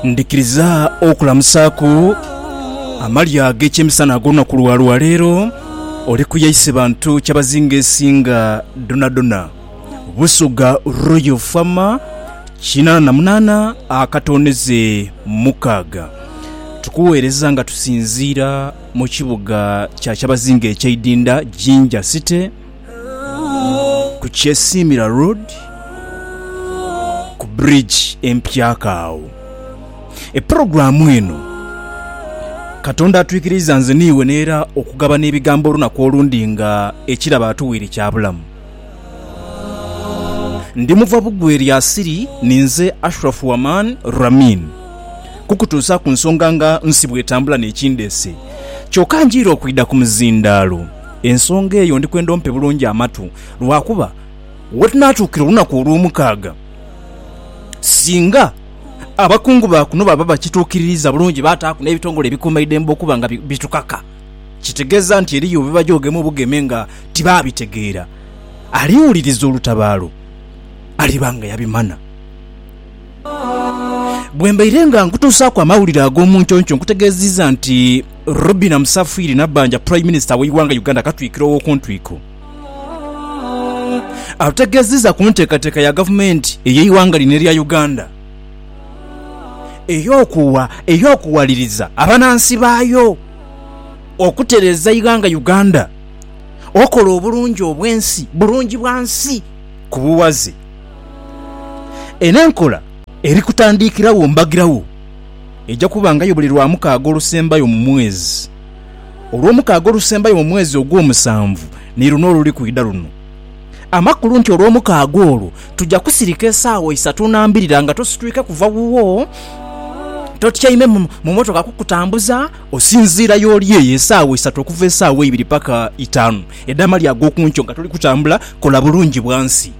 Ndhikiriza okulamusaaku amalya ag'ekyemisana ag'olunaku lwa lwaleero. Oli kuya ise bantu kyabazinga esinga dhonadhona. Busoga Royal Farmer kinaana na munaana akatooneze mukaaga. Tukuweereza nga tusinziira mu kibuga kya kyabazinga eky'eidinda Jinja City. ku Kyesiimira Road ku bridge empyaka agho. Epulogulaamu eno Katonda atwikiriiza nze n'iwe n'era okugabana ebigambo olunaku olundi nga ekirabo atuwiire kya bulamu. Ndi muva bugwa erya Asiri ni nze Ashraf Waman Ramin kukutuusa ku nsonga nga nsi bw'etambula n'ekindheese kyoka njiire okwidha ku muzindaalo. Ensonga eyo ndi kwenda ompe bulungi amatu, lwa kuba we tunaatuukira olunaku olw'omukaaga, singa abakungu ba kuno baba bakituukiririza bulungi baataaku n'ebitongole ebikuumaidembe okuba nga bitukaka, kitegeeza nti eriyo bye bajoogema obugeme nga tibaabitegeera, aliwuliriza olutabaalo aliba nga yabimana. Bwe mbaire nga nkutuusaaku amawulire ag'omunconco nkutegeezizza nti Robinah Musafiri Nabbanja Prime Minister w'eighanga Uganda Katwikiro ow'okuntwiko atutegeezizza ku nteekateeka ya Gavumenti ey'eighanga lino erya Uganda ey'okuwaliriza abanansi baayo okutereeza eighanga Uganda okola obulungi obw'ensi bulungi bwa nsi ku buwaze. Eno enkola eri kutandiikiragho mbagiragho eja kubangagho buli Lwamukaaga olusembayo mu mwezi. Olwomukaaga olusembayo mu mwezi ogwomusanvu ni luno oluli kwidha luno. Amakulu nti Olwomukaaga olwo tuja kusirika esaawa isatu na mbirira nga tositwike kuva wuwo, totyaime mu motoka kukutambuza, osinziira y'oli eyo esaawa isatu okuva esaawa eibiri paka itaanu edh'amalya ag'oku nkyo nga toli kutambula kola bulungi bwa nsi.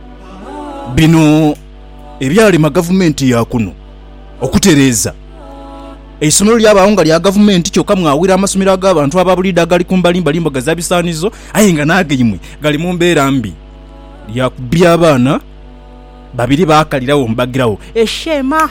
Bino ebyalema gavumenti ya kuno okutereeza eisomero lyabaagho nga lya gavumenti kyoka mwawera amasomero ag'abantu aba buliidho agali ku mbalimbali embuga za bisaanizo aye nga n'agaimwe gali mu mbeera mbi ya kubbi abaana babiri baakaliragho mbagiragho. Eshema.